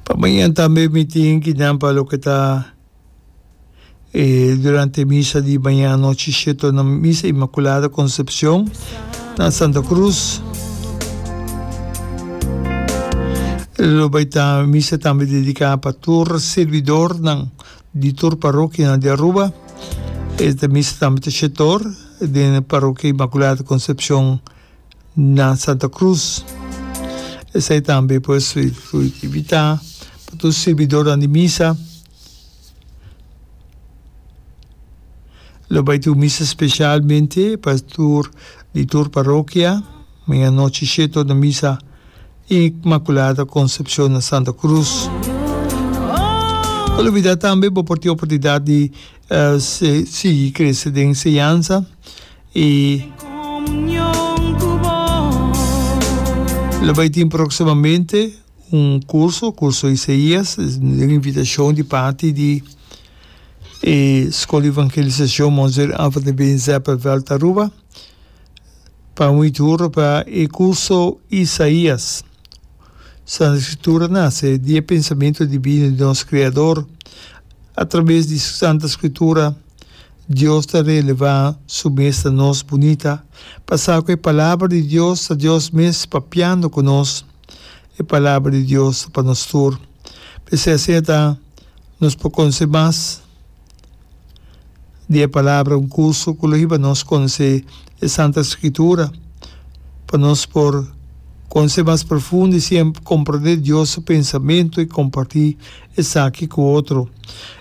Pa mañan tambe mi tin ki nan pa loke ta e durante misa di mañan anochi sheto na misa Inmaculada Concepcion na Santa Cruz. Lo bai ta misa tambe dedica pa tur servidor nan di tur parokia nan di Aruba. E ta misa tambe ta shetor den parokia Inmaculada Concepcion na Santa Cruz. Esei tambe pues su su invita pa tur sirbidornan di misa. Lo bai tur misa specialmente pa tur di tur parokia maña nochi she tur na misa Inmaculada Concepcion na Santa Cruz. No lo olbida tambe bo por tin oportunidad di Se sigui krese den enseñansa i. Lo bai tin próksimamente un kurso, Kurso Isaías, den invitashon di parti di e Skol di Evangelisashon Monseer Anthony Ben Zeppenveld Aruba, pa un iturbe pa e kurso Isaías. Santa Skritura nase di e pensamentu divino di nos Kreador. Atraves di Su Santa Skritura, Dios ta relevá Su mes na nos bunita, pasá ku e Palabra di Dios ta Dios mes papiando ku nos. E Palabra di Dios ta pa nos tur. P'esei asin ta nos por konse mas. di e palabra un kurso ku lo hiba nos konosé e Santa Skitura pa nos por konosé mas profundo i siempr komprondé Dios su pensamentu i kompartí esaki ku otro.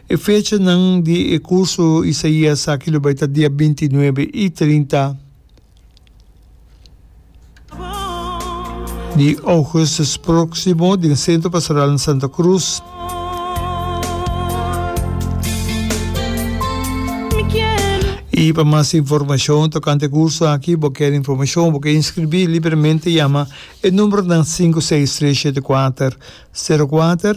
E fechanan di e kurso Isaías aki lo bai ta dia binti nuebe i trinta. Di Augustus próksimo den Sentro Pastoral na Santa Cruz. I pa mas informashon tokante e kurso aki bo kere informashon o bo ke inskribí libremente yama e numberonan sinku seis tres shete kuater sero kuater